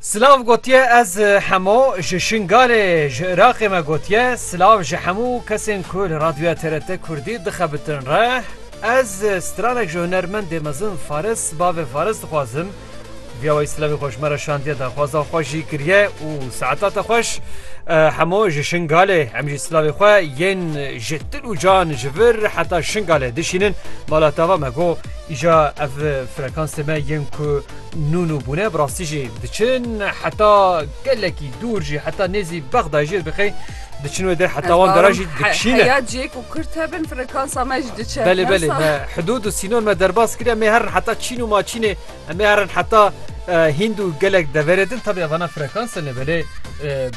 Silav gotiye ez hemo ji Şingalê ji Iraqê me gotiye silav ji hemû kesên ku li radyoya TRT Kurdî dixebitin re ez stranek ji hunermendê mezin Faris bavê Faris dixwazim viya wê silavê xwe ji me re şandiye daxwaza xwe jî kiriye û saeta te xweş hemo ji Şingalê em jî silavê xwe yên ji til û can ji vir heta Şingalê dişînin mala tava me got Îja ev frekansê me yên ku nûn û bûne bi rastî jî diçin heta gelekî dûr jî heta nêzî Bexdayê jî dixê diçin wê der heta wan dera jî dikişîne. Ya cê ku kurt hebin frekansa me jî diçe. Belê belê me hidûd û sînon me derbas kiriye mê herin heta Çîn û Maçînê em ê herin heta Hînd û gelek deverê din tabi evana frekansa ne belê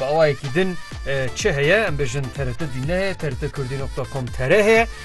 bi awayekî din çi heye em bêjin TRT dîn ne heye TRT kurdî nokta com tere heye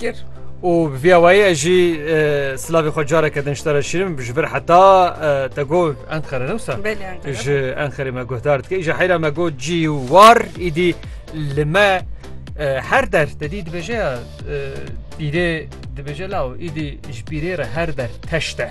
kir û bi vî awayî ez jî silavê xwe careke din ji te re şîrim ji vir heta te got Enqere ne wisa ji Enqerê me guhdar dike ji heyra me got cî û war îdî li me her der te dî dibêje ya pîrê dibêje law îdî ji pîrê re her der teş te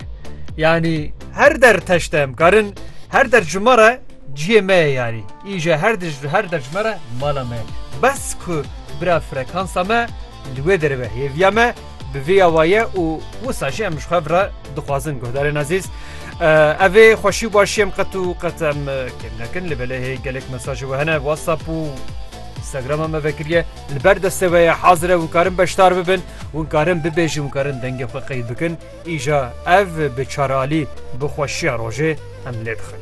yanî her der teş te em karin her der ji me re ciyê me ye yanî îje her her der ji me re mala me bes ku Bira frekansa me li wê derê ve hêviya me bi vê ya waye û wisa jî em ji xwe re dixwazin guhdarên ezîz. Ev ê xweşî û başî em qet û qet em kêm nekin li belê hê gelek mesajê we hene WhatsApp û Instagrama me vekiriye li ber destê we ye hazire hûn karin beşdar bibin hûn karin bibêjin hûn karin dengê xwe qeyd bikin îja ev bi çaralî bi xweşiya rojê em lê dixin.